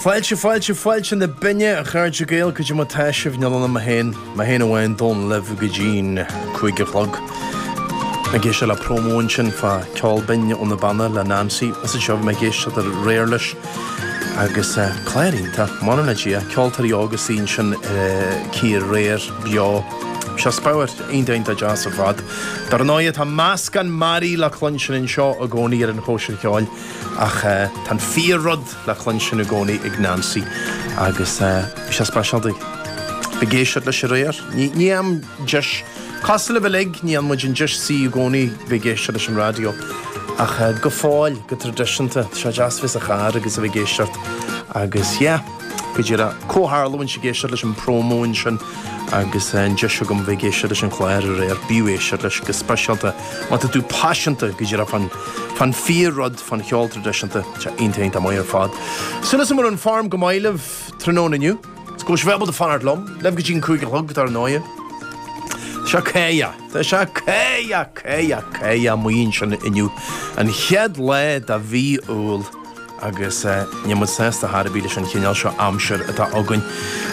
Fáilte, fáilte, fáilte na binne, a chairde Gael, goidé mar tá sibh, níl ann ach mé féin, mé féin amháin Dónall libh go dtí'n cúig a chlog. Ag éisteacht le promo ansin fá Ceol Binn ó na Beanna le Neansaí, is anseo bhí mé ag éisteacht aréir leis agus clár iontach, Maireann le Dia, ceoltóirí óga istigh ansin aici aréir, beo, seo speabhar iontach iontach deas ar fad. Dar ndóighe tá meascán mearaí le cluinstin anseo i gcónaí ar an chóisir cheoil. Ach tá an fíor rud le cluinstin i gcónaí ag Neansaí agus bhí sé speisialta bheith ag éisteacht leis aréir, ní bhíonn deis, cosúil libh uilig, ní fhaigheann muid an deis suí i gcónaí bheith ag éisteacht leis an raidió. Ach go fóill, go traidisiúnta, tá sé deas bheith sa charr agus a bheith ag éisteacht agus yeah. Go díreach comhtharlú bheinnse ag éisteacht leis an promo ansin agus an deis agam bheith ag éisteacht leis an chlár aréir, b'fhiú éisteacht leis go speisialta má tá tú paiseanta go díreach fán fán fíor rud fán cheol traidisiúnta, sea iontach iontach maith ar fad. Súil agam go bhfuil an form go maith libh tráthnóna inniu, is go bhfuil sibh ábalta fanacht liom, libh go dtí an cúig a chlog dar ndóigh. Seo céa Tá sé céa céa céa maoin sin inniu an chéad lá de mhí Iúil. agus níl muid sásta ar chor ar bith leis an chineál seo aimsir atá againn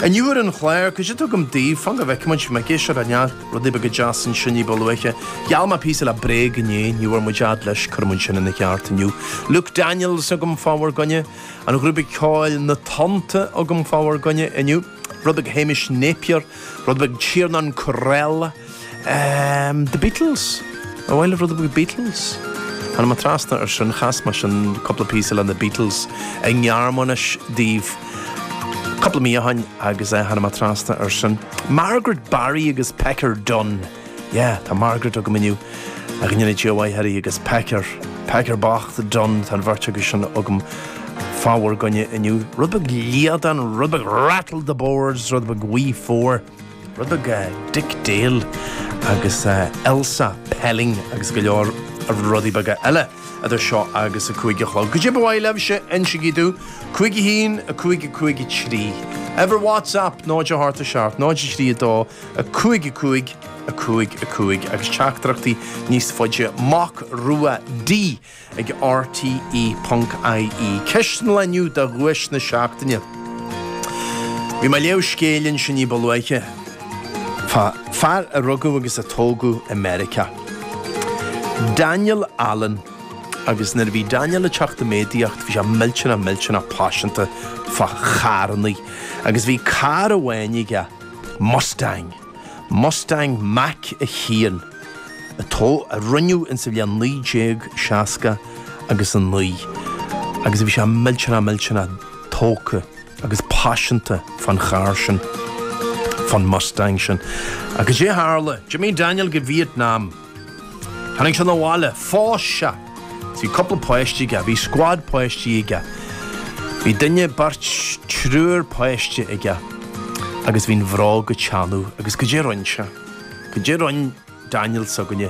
inniu. Ar an chlár, goidé tá agam daoibh, fan go bhfeicfidh muid, bhí mé ag éisteacht le neart rudaí beaga deas ansin ní ba luaithe. Gheall mé píosa le Bréag inné, ní bhfuair muid fhad leis, cuirfidh muid sin ina cheart inniu. Luke Daniels agam fá bhur gcoinne, an ghrúpa ceoil Na Tonnta agam fá bhur gcoinne inniu. rud beag Hamish Napier, rud beag Tiernan Courell, ehm, The Beatles, ah bhuel eh rud beag Beatles. Tháinig mé trasna ar sin, chas mé sin cúpla píosa le na Beatles i nGearmáinis daoibh cúpla mí ó shoin agus eh, tháinig mé trasna ar sin. Margaret Barry agus Pecker Dunne. Yeah, tá Margaret agam inniu, go ndéana Dia a mhaith uirthi agus Pecker, Pecker bocht Dunne, tá an bheirt acu sin agam fá bhur gcoinne inniu. Rud beag Líadan, rud beag Rattle the Boards, rud beag We Four, rud beag Dick Dale agus Elsa Pelling agus go leor rudaí beaga eile eadar seo agus a cúig a chlog. Goidé ba mhaith libhse, insigí domh, cúig a haon, a cúig a cúig a trí. Uimhir WhatsApp, 0 a hocht a seacht, 0 a trí a dó. 5 5 5 5 agus teachtaireachtaí níos faide Mac Rua D ag RTÉ ponc IE. Ceist an Lae inniu do dhuais na seachtaine. Bhí mé ag léamh scéil ansin ní ba luaithe fá fear a rugadh agus a tógadh i Meiriceá. Daniel Allen. Agus nuair a bhí Daniel ag teacht i méadaíocht bhí sé millteanach millteanach paiseanta fá charrannaí. Agus bhí carr amháin aige. Mustang, Mustang Mach 1, atá, a rinneadh insa bhliain 1969 agus bhí sé millteanach millteanach tógtha agus paiseanta fán charr sin, fán Mustang sin. Agus goidé tharla? D'imigh Daniel go Vietnam! Tháinig sé 'na bhaile. Phós sé. Bhí cúpla páistí aige. Bhí scuad páistí aige. Bhí duine, beirt, triúr páiste aige. Agus bhí'n bhróg ag teannadh. Agus goidé rinne sé? Goidé rinne Daniel s'againne?